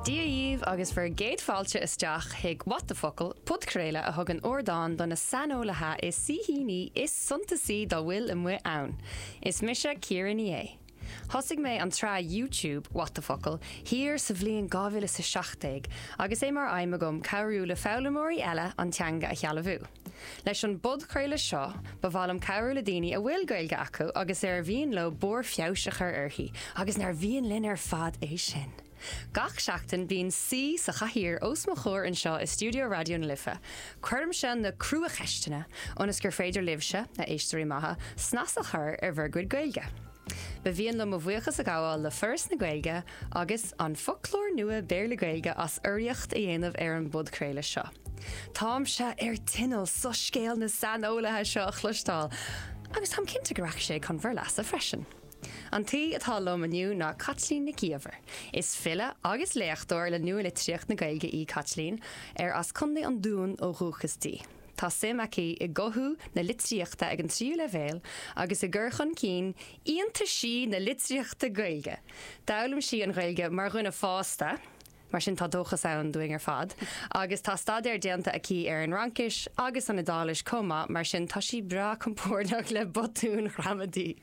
Dia dhíbh agus bhur gcéad fáilte isteach chuig What the Focal, podchraoladh a thugann ardán do na saineolaithe is saoithíní is suntasaí dá bhfuil amuigh ann. Is mise Ciara Ní É. Thosaigh mé an tsraith YouTube What the Focal thiar sa bhliain 2017 agus é mar aidhm agam cabhrú le foghlaimeoirí eile an teanga a shealbhú. Leis an bpodchraoladh seo, ba mhaith liom cabhrú le daoine a bhfuil Gaeilge acu agus ar mhian leo barr feabhais a chur uirthi, agus nár mhian linn ar fad é sin! Gach seachtain, bíonn saoi sa chathaoir os mo chomhair anseo i stiúideo Raidió na Life. Cuirimse na cruacheisteanna ionas gur féidir libhse, a éisteoirí maithe, snas a chur ar bhur gcuid Gaeilge. Ba mhian liom mo bhuíochas a ghabháil le Foras na Gaeilge agus An Foclóir Nua Béarla-Gaeilge as urraíocht a dhéanamh ar an bpodchraoladh seo. Táimse ar tinneall soiscéal na saineolaithe seo a chloisteáil agus táim cinnte go rachaidh sé chun bhur leasa freisin. An t-aoi atá liom inniu ná Caitlín Nic Íomhair. Is file agus léachtóir le nua-litríocht na Gaeilge í Caitlín, ar as Contae an Dúin ó dhúchas di. Tá suim aici i gcothú na litríochta ag an tríú leibhéal agus i gcur chun cinn iontaisí na litríochta Gaeilge. D'fhoghlaim sí an Ghaeilge mar dhuine fásta, mar sin tá dóchas ann dúinn ar fad, agus tá staidéar déanta aici ar an Fhraincis agus an Iodáilis chomh maith, mar sin tá sí breá compordach le botúin ghramadaí.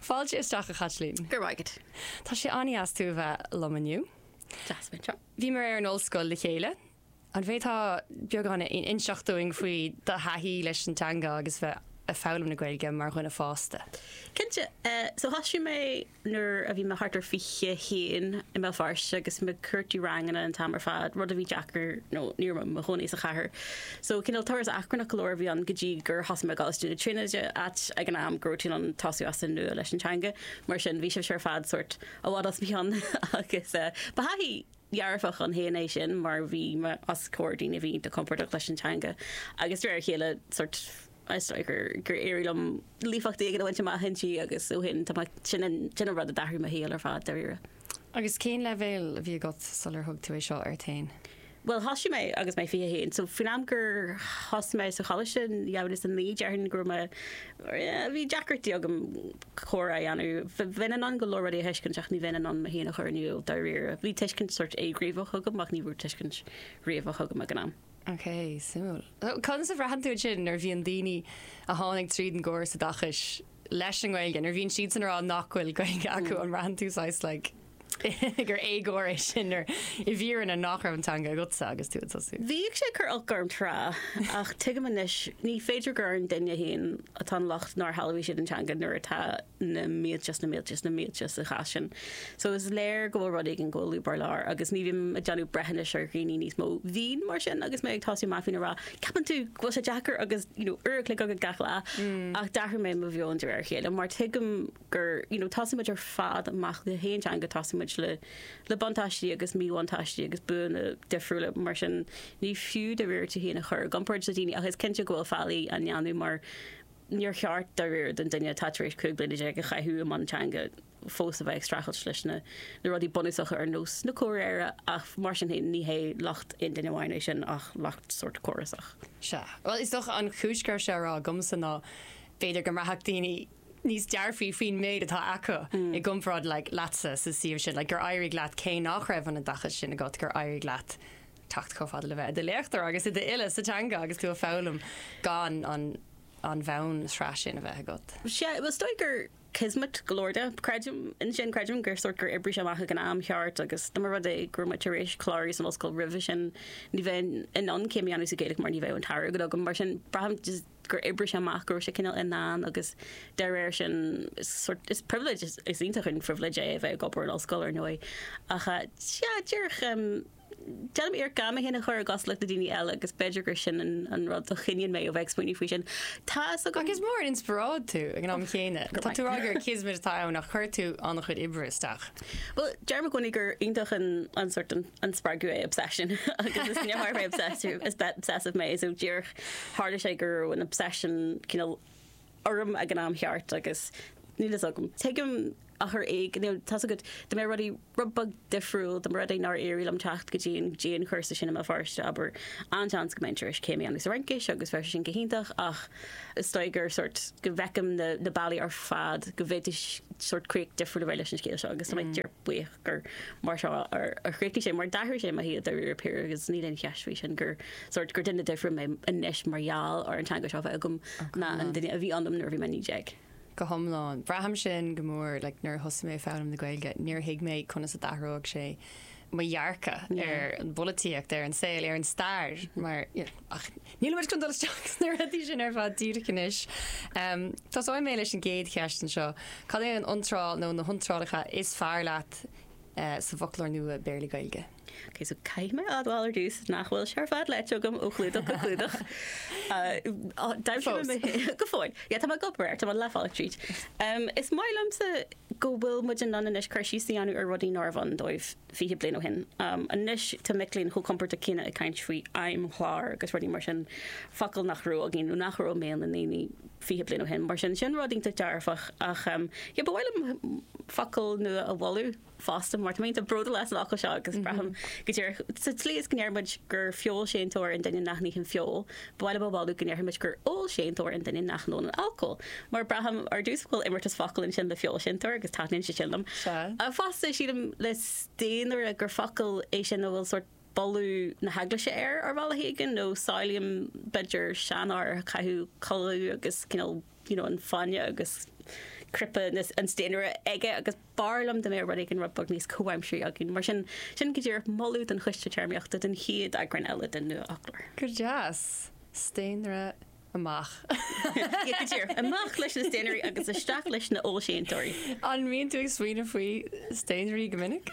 Fáilte isteach, a Chaitlín. Go raibh maith agat. Tá sé an-dheas tú a bheith liom inniu. Deas a bheith anseo. Bhíomar ar an ollscoil le chéile. An bhféadfá beagán a inseacht dúinn faoi do thaithí leis an teanga agus bheith ag foghlaim na Gaeilge mar dhuine fásta? Cinnte. So thosaigh mé nuair a bhí mé thart ar fiche a haon i mBéal Feirste agus bhí mé ag cuartú ranganna an t-am ar fad, rud a bhí deacair nó ní raibh mé i mo chónaí sa chathair. So cineál turas achrannach go leor a bhí ann go dtí gur thosaigh mé i gColáiste na Tríonóide, áit ag an am go raibh tú in ann tosú as an nua leis an teanga. Mar sin bhí sibhse ar fad sórt i bhfad os mo chionn agus ba thaithí. dhearfach ann féin é sin mar bhí mé os comhair daoine a bhí iontach compordach leis an teanga agus de réir a chéile sórt is dóigh gur éirigh liom líofacht éigin a bhaint amach inti agus ó shin tá sin an sin an rud a d'athraigh mo shaol ar fad dáiríre. Agus cén leibhéal a bhí agat sular thug tú é seo ort féin? Bhuel thosaigh mé agus mé 21 so faoin am gur thosaigh mé sa choláiste, dhá mhíle is 9, déarfainn go raibh mé, bhí deacrachtaí agam comhrá a dhéanamh. Bheinn in ann go leor rudaí a thuiscint ach ní bheinn in ann mé féin a chur in iúl dáiríre. Bhí tuiscint sórt éighníomhach agam ach ní raibh tuiscint ghníomhach agam ag an am. Ok, suimiúil. Conas a bhraitheann tú ansin nuair a bhíonn daoine a tháinig tríd an gcóras oideachais leis an nGaeilge, nuair a bhíonn siadsan ag rá nach bhfuil Gaeilge acu, an mbraitheann tú saghas like, gur éagóir é sin mar, i bhfírinne, nach raibh an teanga agatsa agus tú ag tosú. Bhíodh sé ag cur oilc orm tráth, ach tuigim anois, ní féidir gur ar an duine féin atá an locht nár shealbhaigh siad an teanga nuair atá na mílte is na mílte is na mílte sa chás sin. So is léir go bhfuil rud éigin go bhfuil lúb ar lár agus ní bhím ag déanamh breithiúnais ar dhaoine níos mó. Bhínn mar sin agus mé ag tosú amach, bhínn ag rá, 'Ceapann tú go bhfuil sé deacair agus, you know, uair a chloig agat gach lá? Ach d'athraigh mé mo mheon de réir a chéile mar tuigim gur, you know, tosaíonn muid ar fad amach le haon teanga, tosaíonn muid le, le buntáistí agus míbhuntáistí agus buanna difriúla, mar sin ní fiú de réir tú féin a chur i gcomparáid le daoine ach is cinnte go bhfuil faillí á ndéanamh mar níor cheart de réir don duine atá tar éis cúig bliana déag a chaitheamh i mbun teanga fós a bheith ag streachailt leis na, na rudaí bunúsacha ar nós na comhréire ach mar sin féin ní hé locht aon duine amháin é sin ach locht sórt córasach. Sea. Bhuel, is dócha an chúis go raibh sé á rá agamsa ná b'fhéidir go mbraithfeadh daoine níos dearfaí faoin méid atá acu i gcomparáid leatsa sa suíomh sin, gur éirigh leat cé nach raibh an oideachas sin agat, gur éirigh leat teacht chomh fada le bheith i do léachtóir agus i d'fhile sa teanga agus tú ag foghlaim gan an bhonn-shraith sin a bheith agat. Sea, is dóigh gur kismet go leor de. Creidim ansin, creidim gur sórt gur oibrigh sé amach ag an am cheart agus dá mba rud é go mbeinn tar éis clárú san ollscoil roimhe sin, ní bheinn in ann céim a dhéanamh sa Ghaeilge mar ní bheadh an t-airgead agam. Mar sin braithim gur oibrigh sé amach, go raibh sé cineál i ndán agus de réir sin is sort, is privilege, is is iontach an phribhléid é a bheith ag obair in ollscoil ar ndóigh ach sea, díreach déanaim iarracht gan mé féin a chur i gcosúlacht le daoine eile agus b'fhéidir gur sin an an rud a choinníonn mé ó bheith ag smaoineamh faoi sin. Tá fhios agam. Ach is mór an inspioráid tú ag an am chéanna. Go maith. Tá tú ag rá gur kismet atá ann ach chuir tú an-chuid oibre isteach. Bhuel, deirim i gcónaí gur iontach an an sort an an spreagadh é obsession agus is níor tharla mé obsessive is obsessive mé so díreach tharla sé go raibh an obsession cineál orm ag an am cheart agus níl fhios agam. Tuigim ar chor éigin, you know, tá's agat, dá mbeadh rudaí rud beag difriúil, dá mba rud é nár éirigh liom teacht go dtí an dtí an chúrsa sin i mBéal Feirste abair an-seans go mbeinn tar éis céim a dhéanamh sa Fhraincis agus bheadh sé sin go hiontach ach is dóigh gur sort go bhfeicim na na bealaí ar fad go bhféadfadh sort críoch difriúil a bheith leis an scéal seo agus tá mé buíoch gur mar seo a chríochnaigh sé, mar d'athraigh sé mo shaol dáiríre píre agus níl aon cheist faoi sin gur sórt gur duine difriúil mé anois mar gheall ar an teanga seo a bheith agam ná an duine a bhí ionam nuair a bhí mé 19. Go hiomlán. Braithim sin go mór, like, nuair a thosaigh mé ag foghlaim na Gaeilge, níor thuig mé conas a d'athródh sé mo dhearcadh ar an bpolaitíocht, ar an saol, ar an stair mar ach Níl muid chun dul isteach sna rudaí sin ar fad díreach anois. Tosóidh mé leis an gcéad cheist anseo, cad é an iontráil nó na hiontrálacha is fearr leat sa bhfoclóir nua Béarla-Gaeilge? Ok, so caithfidh mé admháil ar dtús nach bhfuil sé ar fad léite agam ó chlúdach go clúdach. D'aimsigh mé go fóill. Yeah, tá mé ag obair air, tá mé leath bealaigh tríd. Is maith liomsa go bhfuil muid in ann anois cur síos a dhéanamh ar rudaí nárbh ann dóibh. 20 bliain ó shin. Anois tá mic léinn chomh compordach céanna ag caint faoi fheidhmchláir agus rudaí mar sin, focail nach raibh againn nó nach raibh i mbéal na ndaoine 20 bliain ó shin. Mar sin, sin rud iontach dearfach ach yeah ba mhaith liom focal nua a mholadh fosta mar tá mé iontach bródúil as an fhocal seo agus braithim go díreach sa tslí is go ndeir muid gur feoilséantóir an duine nach n-itheann feoil, ba mhaith liom ba mhaith liom go ndéarfadh muid gur ólséantóir an duine nach n-ólann alcól, mar braithim ar dtús go bhfuil imeartas focal ansin le feoilséantóir agus taitníonn sé sin liom. Ach fosta, sílim le staonaire gur focal é sin a bhfuil sórt boladh na hEaglaise air ar bhealach éigin, nó samhlaím, b'fhéidir, seanfhear a chaitheadh culaith agus cineál, you know, an fáinne agus cnaipe an staonaire aige agus. b'fhearr liom dá mbeadh rud éigin rud beag níos comhaimsirí againn, mar sin. Sin go díreach moladh don Choiste Téarmaíochta don chéad eagrán eile den Nua-Fhoclóir. Go deas! Staonaire amach. Go díreach. Amach leis na staonairí agus isteach leis na hólséantóirí. An mbíonn tú ag smaoineamh faoi staonairí go minic?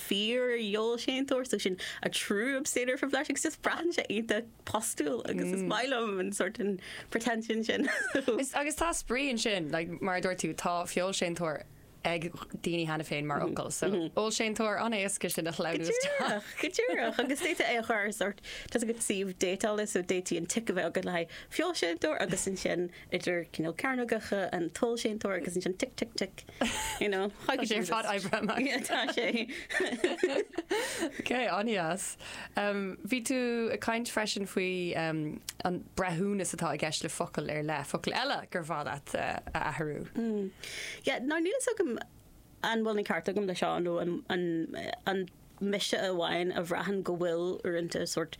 Fíorfheoilséantóir so sin, a true abstainer from flesh, agus just braitheann sé iontach postúil agus is maith liom an sort an pretension sin. Is agus tá spraoi ansin, like mar a dúirt tú, tá feoilséantóir ag daoine cheana féin mar fhocal, so ólséantóir an-éasca sin a shleamhnú isteach. Go díreach, go díreach, agus d'fhéadfá é a chur ar sort, tá a fhios agat suíomh déitála so d'fhéadfadh an tic a bheith agat le haghaidh feoilséantóir agus ansin idir cineál cearnógacha an t-ólséantóir agus ansin tic tic tic you know how could you resist? Tá sé ar fad oibrithe amach. Yeah, tá sé. Ok, an-dheas. Bhí tú ag caint freisin faoi an breithiúnas atá i gceist le focail ar leith, focail eile gur mhaith leat a athrú. Yeah, now níl a fhios agam an bhfuil an ceart agam le seo nó an mise amháin a bhraitheann go bhfuil uaireanta sort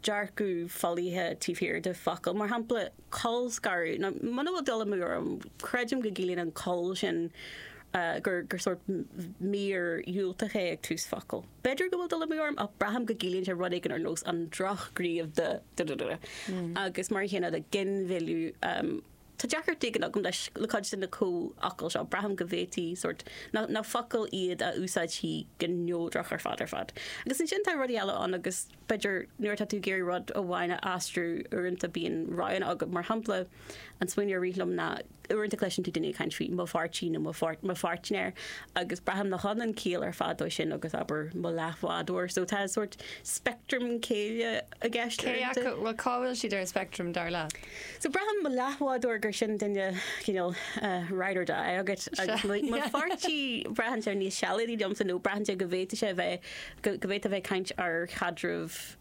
dearcadh folaithe taobh thiar de focail, mar shampla, colscaradh, nó muna bhfuil dul amú orm, creidim go gciallaíonn an col sin gur sórt mír dhiúltach é ag tús focail. B'fhéidir go bhfuil dul amú orm ach braithim go gciallaíonn sé rud éigin ar nós an drochghníomh de da da da da. Agus mar an chéanna le ginmhilleadh, tá deacracht éigin agam leis le cuid de na comhfhocail seo, braithim go bhféadfaí sórt nach nach focail iad a úsáidfí go neodrach ar fad ar fad. Agus ansin tá rudaí eile ann agus. b'fhéidir, nuair atá tú ag iarraidh rud amháin a aistriú, uaireanta bíonn roghanna agat. Mar shampla, an smaoineamh a rith liom ná, uaireanta cloiseann tú daoine ag caint faoi 'mo pháirtí' nó 'mo pháirtnéir' agus braithim nach ionann ciall ar fad dó sin agus, abair, 'mo leathbhádóir'. So tá sórt speictream céille i gceist uaireanta. Cé acu, cá bhfuil siad ar an speictream, dar leat? So braithim 'mo leathbhádóir' gur sin duine, cineál, ride or die agat agus mo pháirtí, braitheann sé níos sealadaí liomsa nó braitheann sé go bhféadfadh sé a bheith go bhféadfá a bheith ag caint ar chaidreamh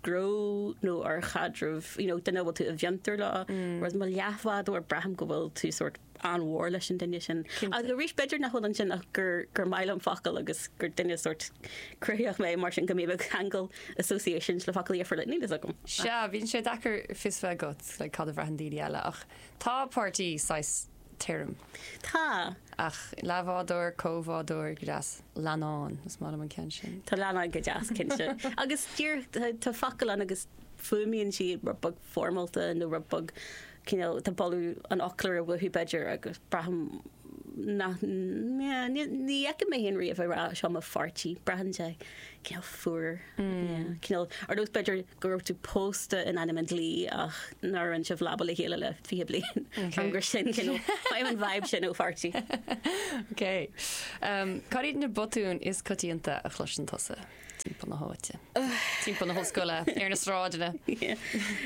gnó nó ar chaidreamh, you know, duine a bhfuil tú i bhfiontar leo, whereas mo leathbhádóir, braithim go bhfuil tú sórt an-mhór leis an duine sin. Agus arís, b'fhéidir nach bhfuil ansin ach gur, gur maith liom focail agus gur duine sórt cruthaitheach mé, mar sin go mbím ag ceangal associations le focail a dhéanfar le níl fhios agam. Sea, bíonn sé deacair fios bheith agat, like, cad a bhraitheann daoine eile ach tá páirtí saghas tirim. Tá. Ach leathbhádóir, comhbhádóir, go deas. Leannán, is maith liom an ceann sin. Tá leannán go deas, cinnte. Agus díreach, tá focail ann agus fuaimíonn siad rud beag foirmeálta nó rud beag, cineál, tá boladh an fhoclóra uathu b'fhéidir agus braithim nach, ní fheicim mé féin riamh ag rá seo mo pháirtí, braitheann sé. cineál fuar, cineál, ar nós b'fhéidir go raibh tú pósta in ainm an dlí ach nár roinn sibh leaba le chéile le fiche bliain, an gur sin cineál, bhfaighim an vibe sin ó pháirtí. Ok. Cad iad na botúin is coitianta a chloiseann tusa timpeall na háite, timpeall na hollscoile, ar na sráideanna? Yeah.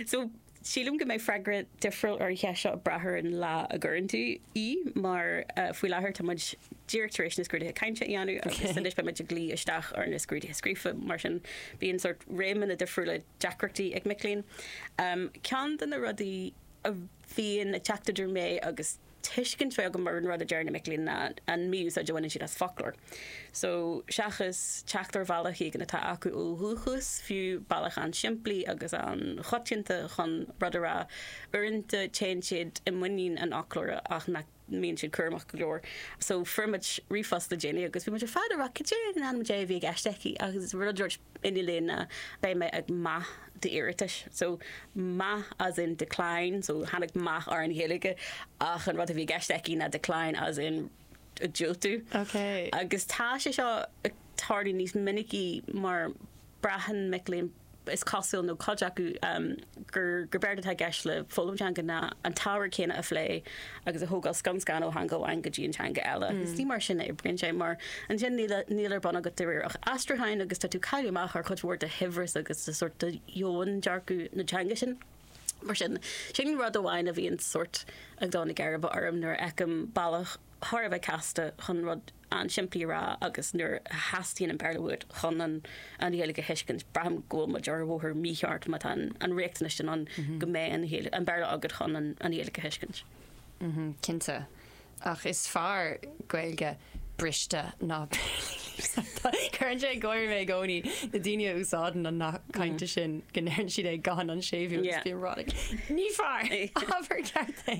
So, Sílim go mbeidh freagra difriúil ar an cheist seo ag brath ar an lá a gcuireann tú í mar faoi láthair tá muid díreach tar éis na scrúduithe cainte a dhéanamh agus anois beidh muid ag luí isteach ar na scrúduithe scríofa, mar sin bíonn sórt réimeanna difriúla deacrachtaí ag mic léinn. Ceann de na rudaí a bhíonn ag teacht idir mé agus. tuiscint a bheith agam ar an rud a deir na mic léinn ná an mí-úsáid a bhaineann siad as foclóir. So, seachas teacht ar bhealach éigin atá acu ó dhúchas, fiú bealach an-simplí agus an-choitianta chun rud a rá, uaireanta téann siad i muinín an fhoclóra ach nach mbíonn siad cúramach go leor. So, fuair muid ríomhphost le déanaí agus bhí muid ar fad ag rá cad é in ainm Dé a bhí i gceist aici ach is rud an líne ná beidh mé ag meath d'iarratais so meath as in decline so tháinig meath ar an Ghaeilge ach an rud a bhí i gceist aici ná decline as in diúltú okay. agus tá sé seo ag tarlú níos minicí mar braitheann mic léinn is cosúil nó cuid acu um, gur gurb éard atá i gceist le foghlaim teanga ná an t-ábhar céanna a phlé agus a thógáil scun scan ó theanga amháin go dtí an teanga eile. Is ní mar sin a oibríonn sé, mar ansin níl a níl ar bun agat dáiríre ach aistriúchán agus tá tú ag cailleadh amach ar chuid mhór de shaibhreas agus de sórt de dhomhandearcadh na teanga sin. Mar sin, sin rud amháin a bhíonn sórt ag dó na geirbe orm nuair a fheicim bealach thar a bheith casta chun rud an-simplí a rá agus nuair a theastaíonn an Béarla uait chun an Ghaeilge a thuiscint, braithim go bhfuil muid ar bhóthar mícheart má tá an riachtanas sin ann go mbeidh an Béarla agat chun an Ghaeilge a thuiscint. Cinnte, ach is fearr Gaeilge briste ná Béarla líofa. Cuireann sé ag gáire mé i gcónaí, na daoine a úsáideann an nath cainte sin go ndeireann siad é gan an séimhiú agus bím ag rá, ní fearr, abair ceart é.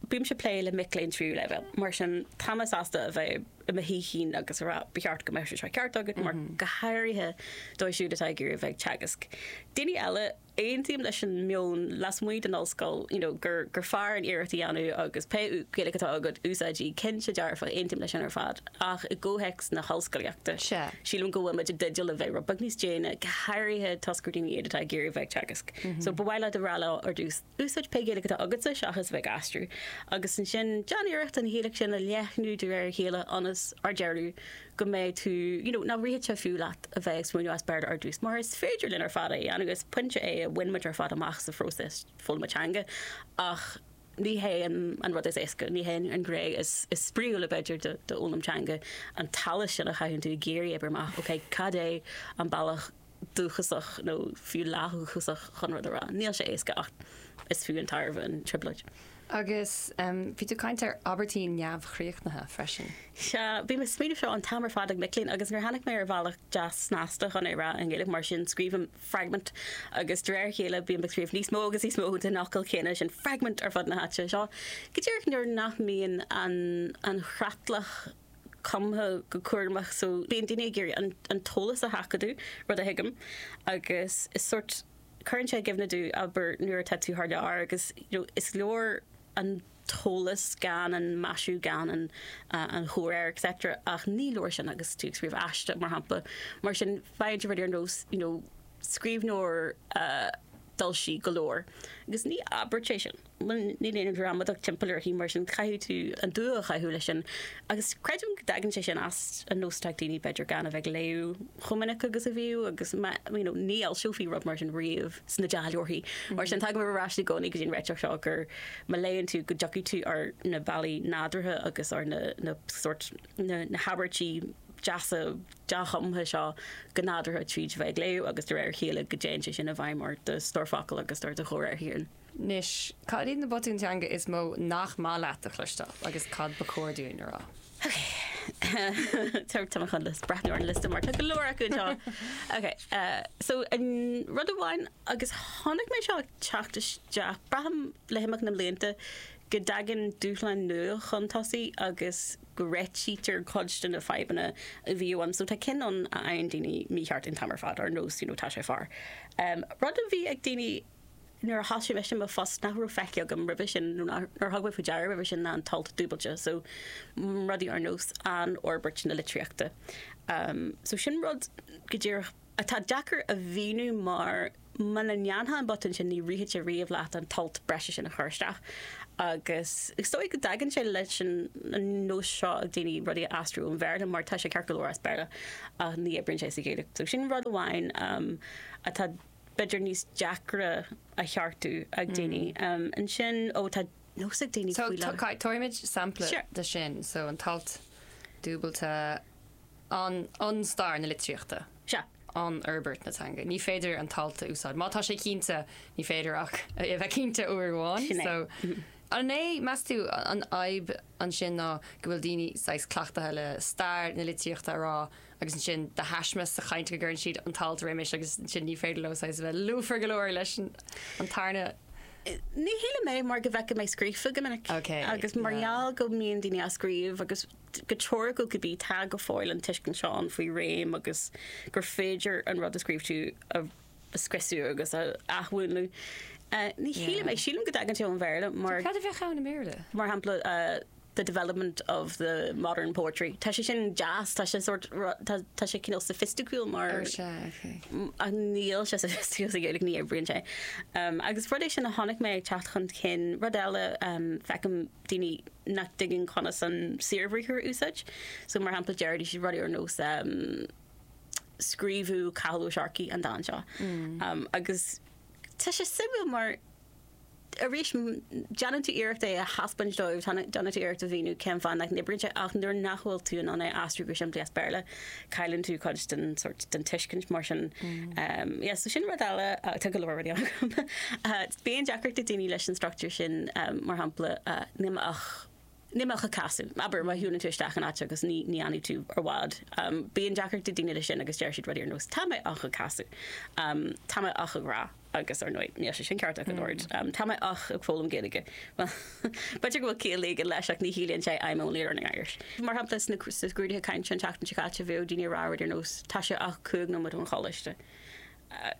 Bímse ag plé le mic léinn tríú leibhéal, mar sin tá mé sásta a bheith i mo shaoithín agus a rá 'ba cheart go mbeadh sé seo ceart agat', mar go háirithe dóibh siúd atá ag iarraidh a bheith ag teagasc. Daoine eile, aontaím leis an meon lasmuigh den ollscoil you know gur gur fearr an iarracht a dhéanamh agus pé Gaeilge atá agat, úsáid í. Cinnte dearfa, aontaím leis sin ar fad, ach i gcomhthéacs na hollscolaíochta, sílim go bhfuil muid i dteideal a bheith rud beag níos déine, go háirithe toisc gur daoine iad atá ag iarraidh a bheith ag teagasc. So ba mhaith leat a rá leo ar dtús, Úsáid pé Gaeilge atá agatsa seachas a bheith ag aistriú, agus ansin déan iarracht an Ghaeilge sin a leathnú de réir a chéile ionas, ar deireadh, go mbeidh tú, you know, nach rithfidh sé fiú leat a bheith ag smaoineamh as Béarla ar dtús, mar is féidir linn ar fad é a dhéanamh, is pointe é a bhain muid ar fad amach sa phróiseas foghlama teanga, ach ní hé an rud is éasca, ní hé an ghné is spraíúla, b'fhéidir, d'fhoghlaim teanga, an t-allas sin a chaitheann tú ag iarraidh oibriú amach, okay, cad é an bealach dúchasach nó fiú leathdhúchasach chun rud a rá. Níl sé éasca ach is fiú an tairbhe an trioblóid. Agus bhí tú ag caint ar abairtí neamhchríochnaithe freisin. Sea, bím ag smaoineamh seo an t-am ar fad ag mic léinn agus níor tháinig mé ar bhealach deas snasta chun é a rá i nGaeilge, mar sin scríobhaim 'fragment' agus de réir a chéile bím ag scríobh níos mó agus níos mó den fhocal céanna sin 'fragment' ar fud na háite seo, go díreach nuair nach mbíonn an chreatlach cumtha go cúramach so bíonn daoine ag iarraidh an an t-eolas a sheachadadh, rud a thuigim, agus is sórt cuireann sé i gcuimhne dom, abair, nuair atá tú thar lear agus you know is leor an t-eolas gan an maisiú gan an an chomhréir et cetera ach ní leor sin agus tú ag scríobh aiste mar shampla mar sin faigheann tú rud ar nós you know scríbhneoir a d'fhoilsigh go leor agus ní abairt é sin. Níl aon ghramadach timpeall uirthi, mar sin caithfidh tú an dua a chaitheamh leis sin. Agus creidim go dtagann sé sin as an nós atá ag daoine b'fhéidir gan a bheith ag léamh chomh minic agus a bhíodh agus you know ní fhoilseofaí rud mar sin riamh sna dea-leabhair. Mar sin tagaimid ar ais i gcónaí go dtí an réiteach seo gur má léann tú go dtiocfaidh tú ar na bealaí nádúrtha agus ar na na sórt na na habairtí deasa dea-chumtha seo go nádúrtha tríd a bheith ag léamh agus de réir a chéile go dtéann sé sin i bhfeidhm ar do stórfhocal agus ar do chomhréir féin. Anois, cad iad na botúin teanga is mó nach maith leat a chloisteáil agus cad ba chóir dúinn a rá? Tá mé chun just breathnú ar an liosta mar tá go leor acu anseo. Ok, so an rud amháin agus tháinig mé seo ag teacht isteach braithim le himeacht na mblianta go dtagann dúshláin nua chun tosaigh agus go réitítear cuid de na fadhbanna a bhíodh ann. So tá cinn ann a fhaigheann daoine mícheart an t-am ar fad, ar nós, you know, tá sé fear. Rud a bhí ag daoine nuair a thosaigh mé i mo phost nach raibh feicthe agam roimhe sin nó nár thug mé faoi deara roimhe sin ná an t-alt dúbailte so rudaí ar nós an fhorbairt na litríochta. So sin rud go díreach atá deacair a mhíniú mar muna ndéanfá an botún sin ní rithfeadh sé riamh leat an t-alt breise sin a chur isteach agus is dóigh go dtagann sé leis an nós seo ag daoine rudaí a aistriú ón Bhéarla mar tá sé ceart go leor as Béarla ach ní oibríonn sé sa Ghaeilge. So sin rud amháin atá b'fhéidir níos deacra a cheartú ag daoine. Ansin, ó tá nós ag daoine faoi láthair. So, tabharfaimid sampla de sin, so an t-alt dúbailte, an, an stair na litríochta, an fhorbairt na teanga. Ní féidir an t-alt a úsáid, má tá sé cinnte, ní féidir ach é a bheith cinnte uair amháin. So, an é, meas tú, an fhadhb ansin ná go bhfuil daoine saghas cleachtaithe le stair na litríochta a rá agus ansin de thaisme sa chaint go gcuireann siad an t-alt roimis agus ansin ní féidir leo saghas a bheith lúfar go leor leis an tarna. Ní shílim é mar go bhfeicfidh mé scríofa go minic agus mar gheall go mbíonn daoine á scríobh agus go teoiriciúil cibé, tá go fóill an tuiscint seo ann faoin réim agus gur féidir an rud a scríobh tú a a scriosadh agus a athmhúnlú. Ní shílim é. Yeah. Sílim go dtagann sé ón Bhéarla mar. Cad a bheadh ann i mBéarla? mar shampla the development of the modern poetry. Tá sé sin deas, tá sé sort ru-, tá, tá sé cineál soifisticiúil mar. Ó sea, ok. M- ach níl sé soifisticiúil sa Ghaeilge, ní oibríonn sé. Umm, agus rud é sin a chonaic mé ag teacht chun cinn. Rud eile, umm, feicim daoine nach dtuigeann conas an saorbhriathar a úsáid. So mar shampla, deir siad rudaí ar nós, umm. scríobhadh Cathal Ó Searcaigh an dán seo agus tá sé suimiúil mar arís déanann tú iarracht é a thaispeáint dóibh, déanann tú iarracht a mhíniú cén fáth nach n-oibríonn sé ach nuair nach bhfuil tú in ann é a aistriú go simplí as Béarla cailleann tú cuid den sort den tuiscint mar sin. Yes, so sin rud eile, tá go leor rudaí ann agam. Bíonn deacracht ag daoine leis an struchtúr sin mar shampla, níl mé ach níl mé ach ag casadh, abair, má shiúlann tú isteach in áit agus ní fhanfaidh tú i bhfad. Bíonn deacracht ag daoine leis sin agus deir siad rudaí ar nós Tá mé ach ag casadh. Tá mé ach ag rá. Agus, ar ndóigh, níl sé sin ceart ach an oiread. Tá mé ach ag foghlaim Gaeilge. Bhuel, b'fhéidir go bhfuil ciall éigin leis ach ní chiallaíonn sé I'm only learning Irish. Mar shampla, sna scrúduithe cainte an tseachtain seo caite bhíodh daoine ag rá rudaí ar nós Tá sé ach cúig nóiméad ón choláiste.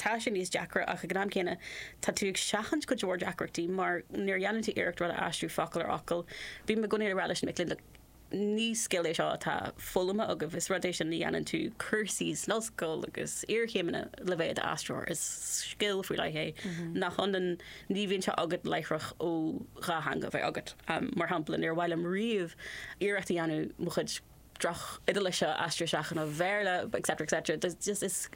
tá sé níos deacra ach ag an am céanna tá tú ag seachaint go leor deacrachtaí mar nuair a dhéanann tú iarracht rud a aistriú focal ar fhocal, bím i gcónaí ag rá leis na mic léinn 'look, ní scil é seo atá foghlamtha agaibh, is rud é seo a ndéanann tú cúrsaí san ollscoil agus iarchéimeanna le bheith i d'aistritheoir, is scil faoi leith é nach ionann, ní bhíonn sé agat láithreach ó dhá theanga a bheith agat. Mar shampla, níor mhaith liom riamh iarracht a dhéanamh mo chuid. droch-Iodailis a aistriú isteach i mBéarla etc etc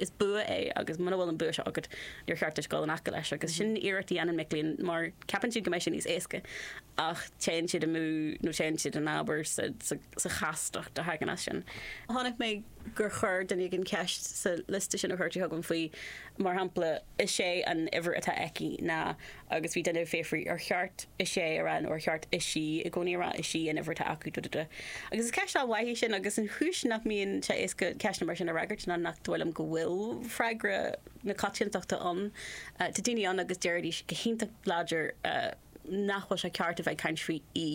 is bua é agus muna bhfuil an bua seo agat níor cheart duit dul in aice leis agus sin iarracht a dhéanann mic léinn mar ceapann siad go mbeidh sé níos éasca ach téann siad amú nó téann siad in abar sa chastacht a thagann as sin. Chonaic mé gur chuir duine éigin ceist sa liosta sin a chuir tú chugam faoi mar shampla, Is é an uimhir atá aici ná agus bhí duine ag fiafraí, ar cheart is é a rá nó ar cheart is í i gcónaí a rá? Is í an uimhir atá acu. duh duh duh Agus is ceist an-mhaith í sin agus an chúis nach mbíonn sé éasca ceisteanna mar sin a fhreagairt ná nach dóigh liom go bhfuil freagra na coitiantachta ann. Tá daoine ann agus déarfaidís go hiontach láidir, nach bhfuil sé ceart a bheith ag caint faoi í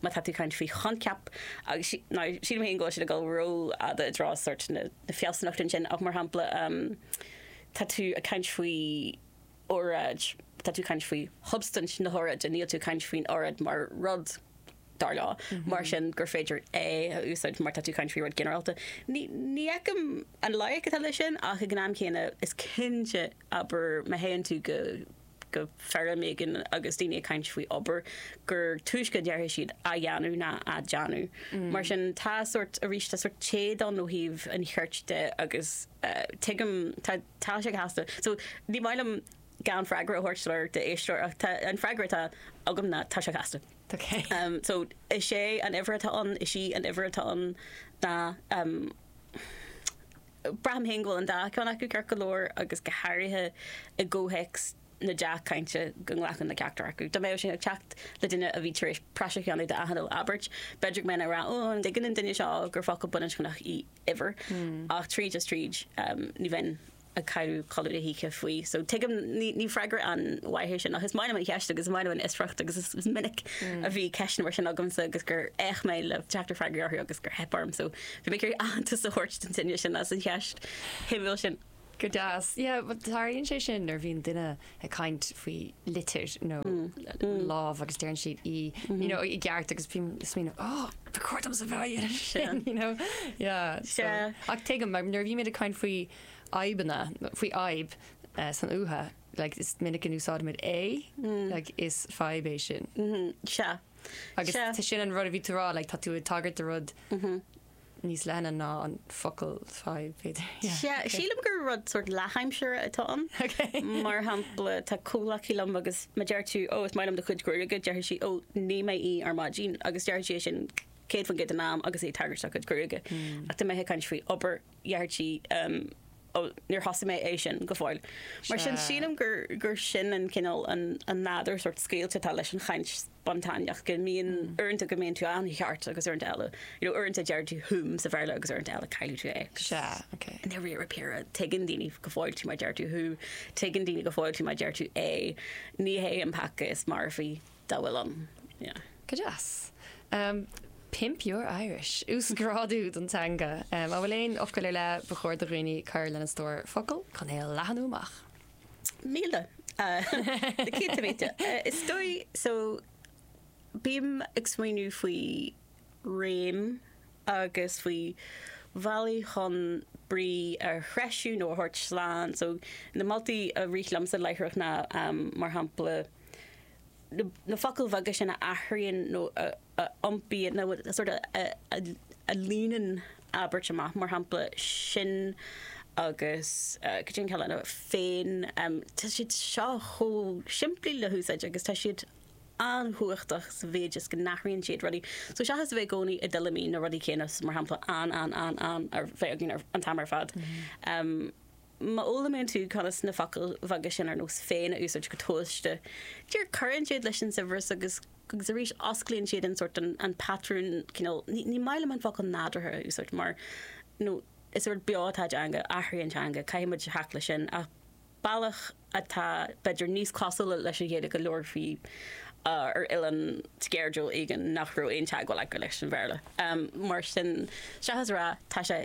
má tá tú ag caint faoi choincheap agus sílim féin go bhfuil siad ag dul rófhada i dtreo sórt na fealsúnachta ansin ach mar shampla tá tú ag caint faoi óráid tá tú ag caint faoi shubstaint na hóráide níl tú ag caint faoin óráid mar rud dar leo mar sin gur féidir é a úsáid mar tá tú ag caint faoi rud ginearálta ní ní fheicim an loighic atá leis sin ach ag an am céanna is cinnte abair má théann tú go go feirm éigin agus daoine ag caint faoi obair, gur túisce a déarfaidh siad 'á dhéanamh' ná 'á déanamh'. Mar sin, tá sórt, arís, tá sórt téad rite ann ó thaobh an chirt de agus tuigim, tá tá sé casta. So, ní maith liom gan freagra a thabhairt le d'éisteoir ach tá, an freagra atá agam ná tá sé casta. Okay. Um, so, is é an uimhir atá ann, is í an uimhir atá ann ná um, Braithim féin go bhfuil an dá cheann acu ceart go leor agus go háirithe i gcomhthéacs na dea-chainte go nglacann le ceachtar acu. Dá mbeadh sé ag teacht le duine a bhí tar éis praiseach a dhéanamh de gach uile abairt, b'fhéidir go mbeinn ag rá, oh, an dtuigeann an duine seo gur focal baininscneach í uimhir? Ach tríd is tríd, ní bheinn ag cailliúint codladh na hoíche faoi. So, tuigim, ní freagra an-mhaith é sin ach is maith liom an cheist agus is maith liom an fhiosracht agus is minic a bhí ceisteanna mar sin agamsa agus gur fhéach mé le teacht ar freagraí orthu agus gur theip orm. So, Bhí mé ag iarraidh aitheantas a thabhairt don duine sin as an cheist shuimiúil sin. Go deas. Yeah, well tarlaíonn sé sin nuair bhíonn duine ag caint faoi litir nó lámh agus deireann siad í, you know, i gceart agus bím ag smaoineamh, oh, ba chóir domsa a bheith ag rá sin, you know. Yeah, so, ach tuigim, mar nuair a bhímid ag caint faoi fhadhbanna, faoi fhadhb san uatha, like, is minic a úsáidimid é, like, is fadhb é sin. Sea. Agus Sea. sin an rud a bhí tú a rá, like, tá tú ag tagairt do rud níos leithne ná an focal fadhb, b'fhéidir. Yeah, Sea, ok. sílim gur rud sort leathaimsire atá ann. Ok. Mar shampla, tá comhghleacaí liom agus má deir tú, ó, is maith liom do chuid gruaige, deirfidh sí, ó, nigh mé é ar maidin, agus deirfidh sí é sin 100% den am agus í ag tagairt dá cuid gruaige. Ach tá mé ag caint faoi obair déarfaidh sí, ó, níor thosaigh mé é sin go fóill. Mar sin, sílim gur sin an cineál, an nádúr sórt scaoilte atá leis an chaint spontáineach, go mbíonn uaireanta go mbíonn tú an-cheart agus uaireanta eile, you know, uaireanta deir tú whom sa Bhéarla agus uaireanta eile cailleann tú é. Sea, ok. I ndeireadh báire, tuigeann daoine go fóill tú má deir tú who, tuigeann daoine go fóill tú má deir tú é, ní hé an peaca is marfaí. dá bhfuil ann. Yeah. Go deas. Pimp your Irish. Uasghrádú don teanga. An bhfuil aon fhocail ar leith ba chóir do dhaoine a chur lena stór focal chun é a leathnú amach? Míle. Na céadta mílte. Is dóigh so bím ag smaoineamh faoi réim agus faoi bhealaí chun brí a threisiú nó a thabhairt slán. So na moltaí a rith liomsa láithreach ná mar shampla, na focail bheaga sin a athraíonn nó a iompaíonn nó sort of a líonann abairt amach, mar shampla, sin agus goidé an ceann eile, féin. Tá siad seo chomh simplí le húsáid agus tá siad an-chumhachtach sa mhéid is go n-athraíonn siad rudaí. So seachas a bheith i gcónaí i dtuilleamaí na rudaí céanna, mar shampla, an, an, an, an a bheith againn an t-am ar fad, Má fhoghlaimíonn tú conas na focail bheaga sin ar nós 'féin' a úsáid go tomhaiste, dear, cuireann siad leis an saibhreas agus agus arís osclaíonn siad an sórt, an patrún cineál, ní ní maith liom an focal 'nádúrtha' a úsáid mar óir is rud beo atá i dteanga, athraíonn teanga, caithfidh muid glacadh leis sin ach bealach atá b'fhéidir níos cosúla leis an Ghaeilge a labhrófaí ar oileán sceirdiúil éigin nach raibh aon teagmháil acu leis an Bhéarla. Mar sin, seachas a rá 'tá sé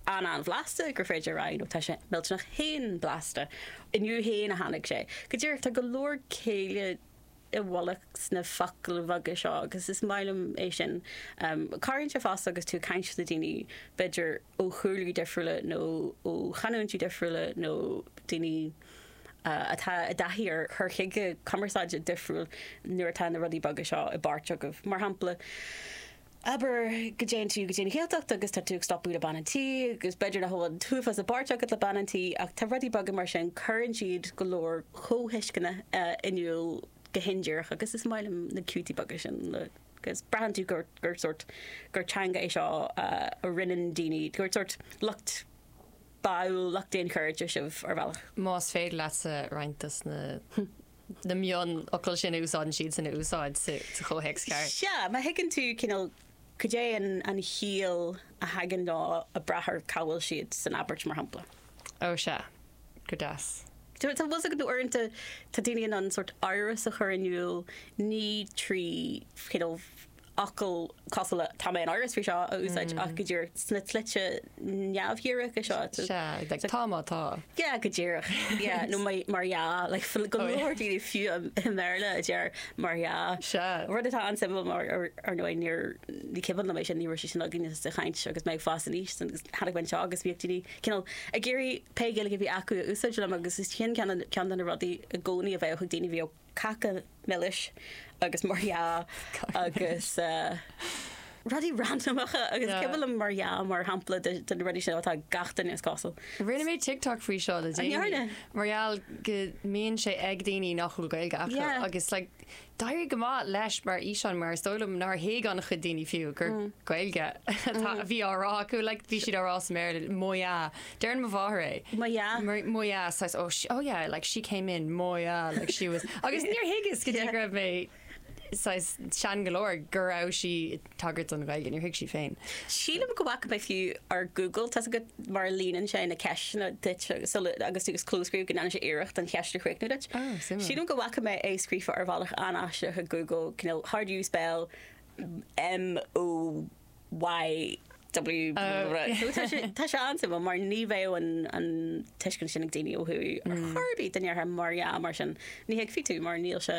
an- an-bhlasta gur féidir a rá ó tá sé millteanach fhéin blasta. Inniu fhéin a tháinig sé. Go díreach tá go leor céille i bhfolach sna focail bheaga seo agus is maith liom é sin. Cabhraíonn sé fosta agus tú ag caint le daoine b'fhéidir ó chúlaí difriúla nó ó chanúintí difriúla nó daoine atá i dtaithí ar chur chuige cumarsáide difriúil nuair atá na rudaí beaga seo i bpáirt agaibh. Mar shampla, Abair go dtéann tú go dtí an Ghaeltacht agus tá tú ag stopadh le bean an tí agus b'fhéidir nach bhfuil an t-uafás i bpáirt agat le bean an tí ach tá rudaí beaga mar sin, cuireann siad go leor comhthuisceana in iúl go hindíreach agus is maith liom na ciútaí beaga sin agus braitheann tú gur sórt, gur teanga é seo a roinneann daoine, gur sórt lucht báúil, lucht d'aon cheird sibh ar bhealach. Más féidir leatsa roinnt dos na. na mionfhocail sin a úsáideann siadsan a úsáid sa chomhthéacs ceart. Sea, má thuigeann tú cineál cad é an chiall a thagann nó ag brath ar cá bhfuil siad san abairt, mar shampla. Ó sea. Go dtí. Tá a fhios agat nó uaireanta tá daoine in ann sórt amhras a chur in iúl, ní trí cineál fhocail cosúil le 'tá mé in amhras faoi seo' a úsáid ach go díreach sna slite neamhdhíreacha seo. Sea, like 'tá má tá'. Yeah, go díreach. Yeah, nó mar dhea, like go leor daoine fiú i mBéarla a deir 'mar dhea'. Sea. Rud atá an-suimiúil mar, ar ndóigh, ní, ní cuimhin liom é sin, ní raibh sé sin againn sa chaint agus mé ag fás aníos sin agus tháinig mé anseo agus bhíodh daoine cineál ag iarraidh pé Gaeilge a bhí acu a úsáid liom agus sin ceann de na rudaí i gcónaí a bheadh ag daoine a bhíodh cáca milis agus mar dhea agus rudaí randamacha agus is dóigh liom mar dhea mar shampla ceann de na rudaí sin atá ag gach duine is cosúil. Rinne mé TikTok faoi seo le déanaí. An ndearna? Mar gheall go mbíonn sé ag daoine nach bhfuil Gaeilge acu. Yeah. Agus like d'éirigh go maith leis mar fhíseán mar is dóigh liom nár thuig ana-chuid daoine fiú gur Gaeilge atá a bhí á rá acu like bhí siad á rá sa mBéarla moya. Deireann mo mháthair é. Moya. Moya, saghas, oh, she, oh yeah, like she came in, Moya, like she was, agus níor thuigeas go dtí go raibh mé saghas sean go leor go raibh sí ag tagairt don Ghaeilge, níor thuig sí féin. Sílim go bhfaca mé fiú ar Google, tá agat mar a líonann sé na ceisteanna duit sula, agus tú ag clóscríobh go ndéanann sé iarracht an cheist a chríochnú duit. Oh, suimiúil. Sílim go bhfaca mé é scríofa ar bhealach an-aisteach ag Google, cineál how do you spell M-O-Y-A? Y-W, tá sé an-suimiúil mar ní bheadh an tuiscint sin ag daoine ó thuaidh ar chor ar bith, ní deirtear mar dhea mar sin, ní thuigfeadh tú mar níl sé.